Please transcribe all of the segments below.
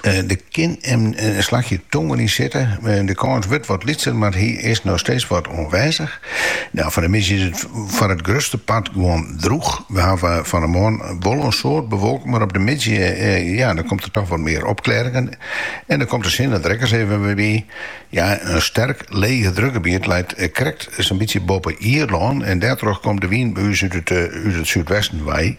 Der kin in slachje tongen yn sitte. De kâns wurdt wat lytser, mar hy is noch steeds wat oanwêzich. Nou, foar de middei is it foar it grutste part gewoan drûch. We hawwe fan 'e moarn wol in soad bewolking, mar op de middei ja, dan komt der toch wat mear opklêringen. En dan komt de sinne der ek ris even wer by. Ja, in sterk leegedrukgebiet leit krekt sa'n bytsje boppe Ierlân en dêrtroch komt de wyn by ús út it súdwesten wei.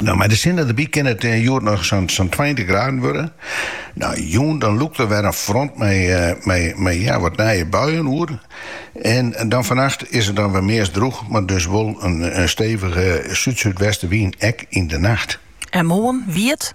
Nou, mei de sinne derby kin it eh, hjoed noch sa'n sa'n 20 graden wurde. Nou, jûn dan lûkt er wer in front mei, eh, mei, mei ja, wat nije buien oer. En dan fannacht is it dan wer meast droech, mar dus wol in, in stevige súd-súdwestewyn ek yn de nacht. En moarn wiet?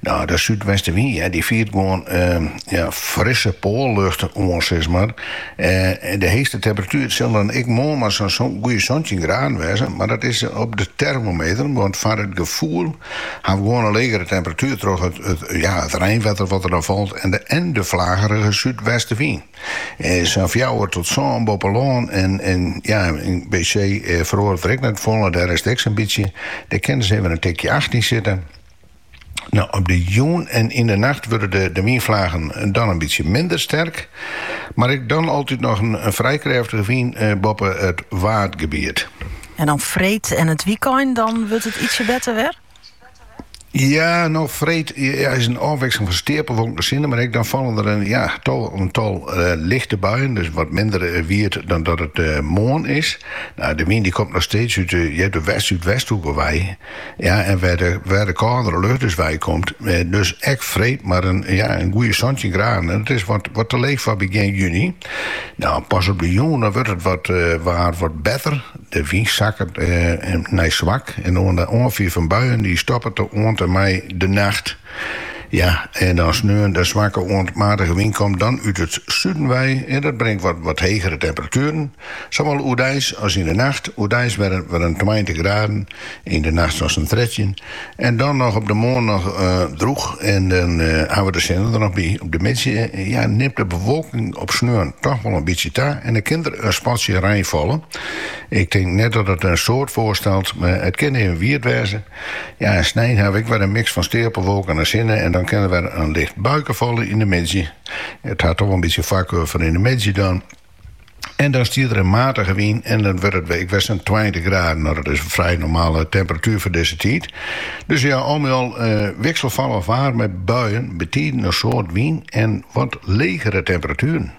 No, de súdwestenwyn die fiert gewoan frisse poallucht oan, sis mar. De heechste temperatuer sil dan ek moarn mar sa'n goede santjin graden wêze, mar dat is op de termometer, want foar it gefoel ha we gewoan in legere temperatuer troch it reinwetter wat der dan falt en de flagerige súdwestenwyn. Sa'n fjouwer tot sân boppe lân en by see feroaret der ek net folle, dêr is it ek sa'n bytsje. Dêr kin ris even in tikje acht yn sitte. Nou, op de jûn en yn de nacht wurde de wynflagen dan in bytsje minder sterk, mar ek dan altyd noch in frij krêftige wyn boppe it Waadgebiet. En dan freed en it wykein, dan wurdt it ietsje better wer? Ja, no freed ja, is in ôfwikseling fan steapelwolken te sinne, mar ek dan fallen der een, ja, tal, in tal uh, lichte buien, dus wat minder uh, wiet dan dat it uh, moarn is. Nou, de wyn dy komt noch steeds út, uh, út de west-súdwesthoeke wei. Ja, en wêr de, wêr de kâldere lucht dus wei komt, eh, dus ek freed mar in, ja, in goede santjin graden. En dat is wat, wat te leech foar begjin juni. Nou, pas op de jûn, dan wurdt it wat, it, waar wat better. De wyn sakkert eh, nei swak en de oanfier fan buien dy stoppet oant en mei de nacht. Ja, en dan sneon de swakke oant matige wyn komt dan út it suden wei en dat bringt wat hegere temperatueren, sawol oerdeis as yn de nacht. Oerdeis wer in tweintich graden, yn de nacht as in trettjin. En dan noch op de moarn noch drûch en dan hawwe we de sinne der noch by. Op de middei ja, nimt de bewolking op sneon toch wol in bytsje ta en dan kin der in spatsje rein falle. Ik tink net dat it in soad foarstelt, mar it kin even wiet wêze. Ja, en snein hawwe ek wer in miks fan steapelwolken en sinne en dan kin der wer in licht buike falle yn de middei. It hat toch in bytsje foarkeur foar yn de middei dan. En dan stiet der in matige wyn en dan wurdt it ek wer sa'n tweintich graden. No, dat is in frij normale temperatuer foar dizze tiid. Dus ja, al mei al eh, wikselfallich waar mei buien, betiden in soad wyn en wat legere temperatueren.